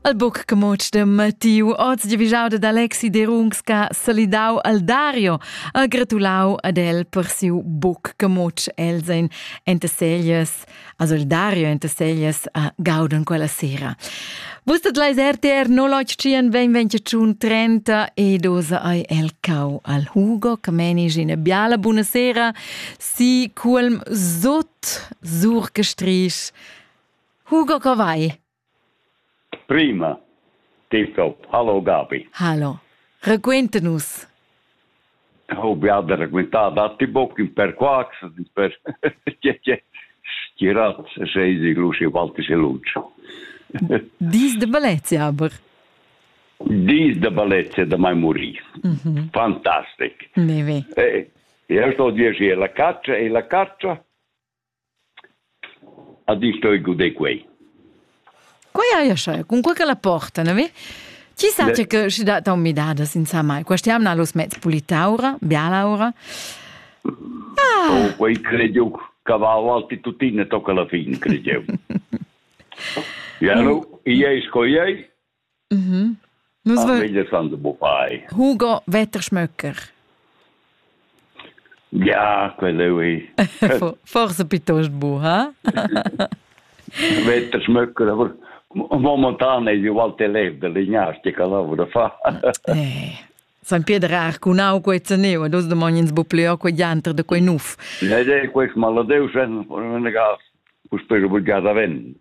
Al buc che moc de Mattiu oz giavischau ad Alexi Derungs che ha salidau al Dario ha gratulau ad el per siu buc che moc els ein enta serias a Solidario enta serias a Gauden quella sera. Vus dat leis RTR 081 2021 30 e dosa ai el cau al Hugo che menis ina biala buonasera si culm sot sur gestrisch Hugo, co vai? Prima. Tito. Hallo Gabi. Hallo. Raquenta nus. Oh, vi ha raccontare da ti in per quax, per tirat sei di luci valti se luncio. Dis de Balezia aber. Dis de Balezia da mai morì. Mhm. Fantastic. Ne ve. Eh, io sto dire la caccia e la caccia Ad isch stoi guder quei. Quei haja scheu, cunquei ch'ella porta, na vi? Ti sa tge che schi dat aun midadas insomma. Questa jamna los mezs pulitaura, bialaura. Ah. Oh, quei credio cavau alti tutina tocca la fin, credio. Ialo, iei sco iei, Mhm. Nus Ah, va- meglio quando bo fai. Hugo Wetterschmöcker. Ja, quello è. For- Forse piuttosto bu, ha? Wetterschmöcker, aber momentan è io Walter Lev dell'Ignastica lavora fa. Eh, San Pieder ha arcunau quei zaneu ed oz domogn ins bu pleu quei dianter de quei nuf. La idea è questa, ma la Deus senza negar puspè obbligada ven.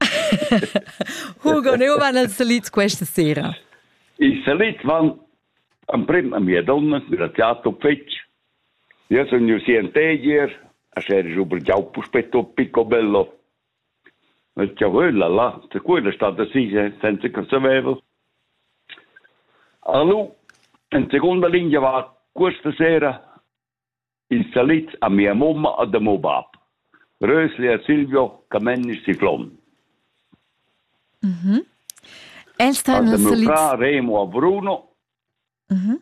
Hugo, ne van els salits questa sera? I salits van emprim a mia donna, da teatro fetg. Io sono un sientegier, a ser giubel giau puspetto picco bello. Chiavuola là, da quella stat da sia senza che saveva. Allo, in seconda linea va questa sera il salit a mia mamma e da mio bab. Rösli e Silvio Camennis Ciflon. Mhm. El sta nel salit. Mio frà Remo a Bruno. Mhm.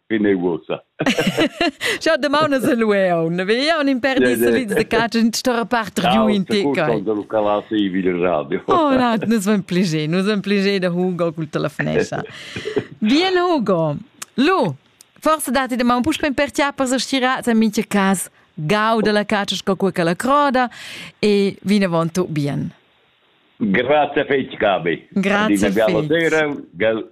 fine uossa. Schau domanda se lueon, ne vei un imperdis de de cacen sta part giu in te kai. Da Lucalas e video radio. Oh na, nus van pliger, nus van pliger da Hugo cul telefonesa. Bien Hugo. Lu, forse dati de man puspe per tia per stirar a mincha cas gau de la caccia sco quella la croda e vine vonto bien. Grazie fetch Gabi. Grazie. Adina sera, gal